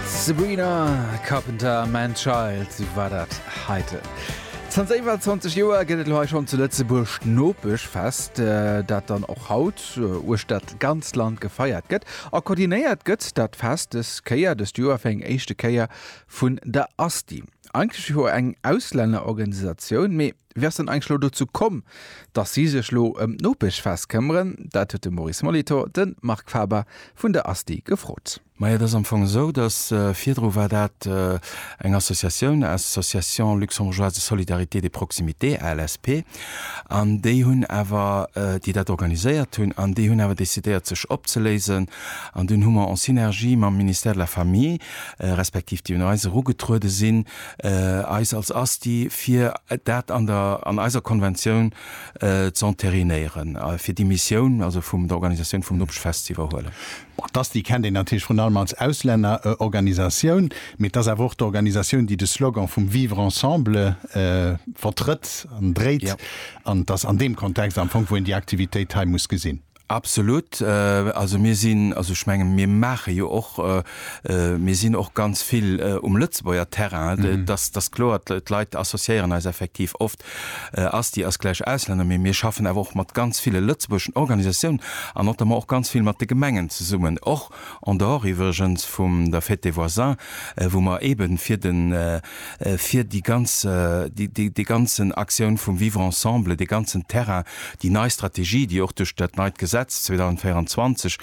Sabrina Carpenter, Man Child war dat heiten. Zanter iwwer 20 Joer gëtt et hei schon zu Lëtzebuerg d'Nopech fest, äh, dat dann och haut äh, uecht dat ganz Land gefeiert gëtt. A koordinéiert gëtt dat Fest des Kéier, dëst Joer fir eng éischte Kéier, vun der ASTI. Eigentlech jo eng Auslännerorganisatioun, mee Wéi ass dann eigentlech elo dozou komm, datt si sech elo ëm d'Nopechfest këmmeren? Dat huet de Maurice Molitor de Marc Faber vun der ASTI gefrot. Majo, et ass am Fong esou, datt virdru war dat eng Associatioun, Association Luxembourgeoise de Solidarité et de Proximité, ALSP, an déi hunn awer, déi dat organiséiert hunn, an déi hunn awer decidéiert sech opzeléisen. An dunn hu mer en Synergie mam Ministère de la Famille, respektiv déi un eis erugetruede sinn, eis als ASTI, fir dat an der, an eiser Konventioun ze enterinéieren, fir déi Missioun also vum der Organisatioun vum Nopechfest ze iwwerhuelen. Bon, d'ASTI kennt een natierlech vrun allem als Auslännerorganisatioun, mee et ass awer och d'Organisatioun, déi de Slogan vum Vivre ensemble vertrëtt an dréit. An et ass an deem Kontext am Fong, wou een déi Aktivitéit hei muss gesinn. Absolut. Also mir sinn, also ech menge mir maache jo och, mir sinn och ganz vill um Lëtzebuerger Terrain, dass dass kloer d'Leit associéieren eis effektiv oft, Asti ass gläich Auslänner, mee mir schaffen awer och mat ganz ville lëtzebuergeschen Organisatiounen an notamment och ganz vill mat de Gemengen zesummen, och en dehors iwwregens vum der Fête des voisins, wou mer eeben fir den, fir déi ganz, déi ganzen Aktioun vum Vivre ensemble, dee ganzen Terrain, déi nei Strategie, déi och duerch dat neit Gesetz 2024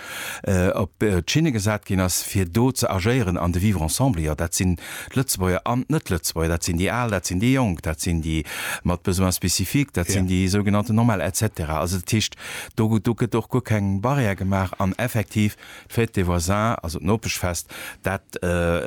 op d'Schinne gesat ginn ass, fir do ze agéieren an de Vivre ensemble, jo, dat sinn d'Lëtzebuerger an d'Net-Lëtzebuerger, dat sinn déi Al, dat sinn déi Jonk, dat sinn déi mat Besoins spécifiques, dat sinn déi sougenannten Normale, et cetera. Also dat heescht, do gëtt och guer keng Barrière gemaach an effektiv d'Fête des voisins, also d'Nopeschfest, dat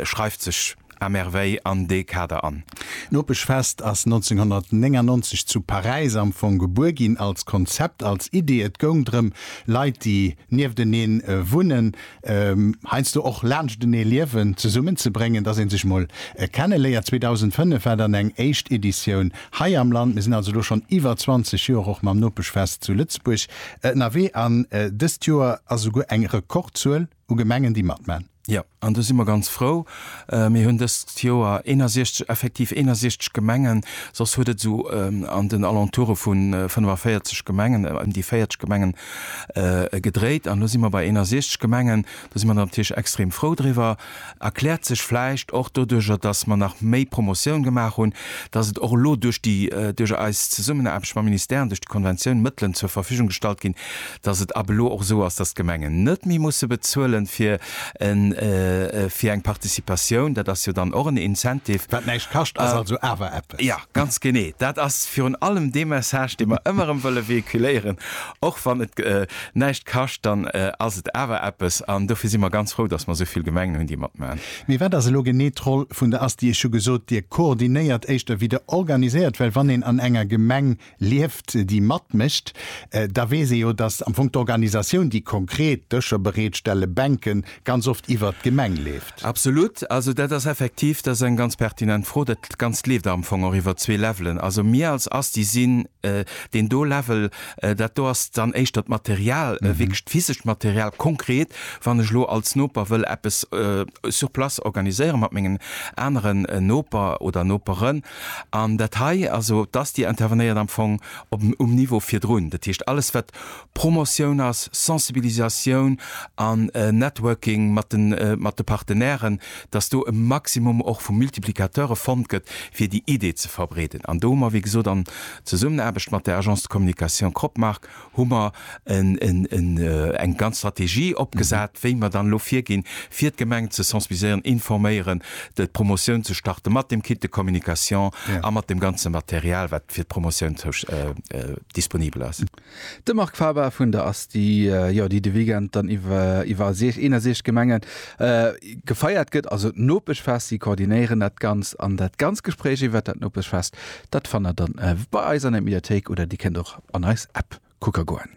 schreift sech à merveille an dee Kader an. D'Nopeschfest ass 1999 zu Paräis am Fong gebuer ginn, als Konzept, als Idee. Et goung drëm, Leit, déi nieftenee wunnen, heiansdo och laanschtenee liewen, zesummenzebréngen, dass ee sech mol kenneléiert. 2005 war dann eng éischt Editioun hei am Land. Mir sinn also elo schonn iwwer 20 Joer och mam Nopeschfest zu Lëtzebuerg ënnerwee an dëst Joer ass esouguer eng Rekordzuel. u Gemengen, déi matman. Jo, an do si mer ganz frou. Mir hunn dëst Joer 61, effektiv 61 Gemengen, soss huet et esou an den Alentoure vu 45 Gemengen, ëm déi 40 Gemengen gedréit. An elo si mer bei 61 Gemengen. Do si mer natierlech extrem frou driwwer. Erkläert sech vläicht och doduercher, datt mer nach méi Promotioun gemaach hunn, datt et och elo duerch déi, duerch eis Zesummenaarbecht mam Ministère an duerch déi Konventioun Mëttelen zur Verfügung gestallt ginn, datt et ab elo och esou ass, datt d'Gemengen net méi musse bezuelen fir e, fir eng Participatioun. Dat ass jo dann och en Incentive. Wat näischt kascht, ass also awer eppes. Jo, ganz genee. Dat ass virun allem dee Message, dee mer ëmmer erëm wëlle véhiculéieren, och wann et, näischt kascht, dann ass et awer eppes. An dofir si mer ganz frou, dass mer esou vill Gemengen hunn, déi matmaachen. Mee wat ass elo genee d'Roll vun der ASTI? Ech hu gesot, Dir koordinéiert éischter wéi Der organiséiert. Well wann een an enger Gemeng lieft, déi matmécht, da weess ee jo, dass am Fong d'Organisatioun, déi konkret Dëscher bereetstellen, Bänken, ganz oft iwwert d'Gemeng leeft. Absolut. Also dat ass effektiv, dat ass eng ganz pertinent Fro. Dat Ganzt leeft am Fong och iwwer zwee Levelen. Also mir als ASTI sinn Deen do Level, dat do ass dann éischter d'Material, wierklech d'physescht Material. Konkret, wann ech elo als Noper wëll eppes sur place organiséiere mat mengen aneren Noper oder Noperen, an dat hei, also d'ASTI intervenéiert am Fong um Niveau virdrun. Dat heescht, alles wat Promotioun ass, Sensibilisatioun an Networking mat de Partenairen, dass do e Maximum och vu Multiplicateure fonnt gëtt, fir déi Idee ze verbreeden. An do hu mer, wéi gesot, an Zesummenaarbecht mat der Agence de communication Cropmark hu mer eng ganz Strategie opgesat, wéi mer dann elo virginn, fir d'Gemengen ze sensibiliséieren, informéieren, d'Promotioun ze starten, mat dem Kit de communication a mat dem ganze Material, wat fir d'Promotioun disponibel ass. De Marc Faber vun der Asti, jo, déi de Weekend dann iwwer 61 Gemenge gefeiert gëtt, also d'Nopeschfest. Si koordinéieren dat Ganzt an dat ganz Gespréich iwwert dat Nopeschfest, dat fannt der dann bei eis an der Mediathéik oder dir kënnt och an eis App kucke goen.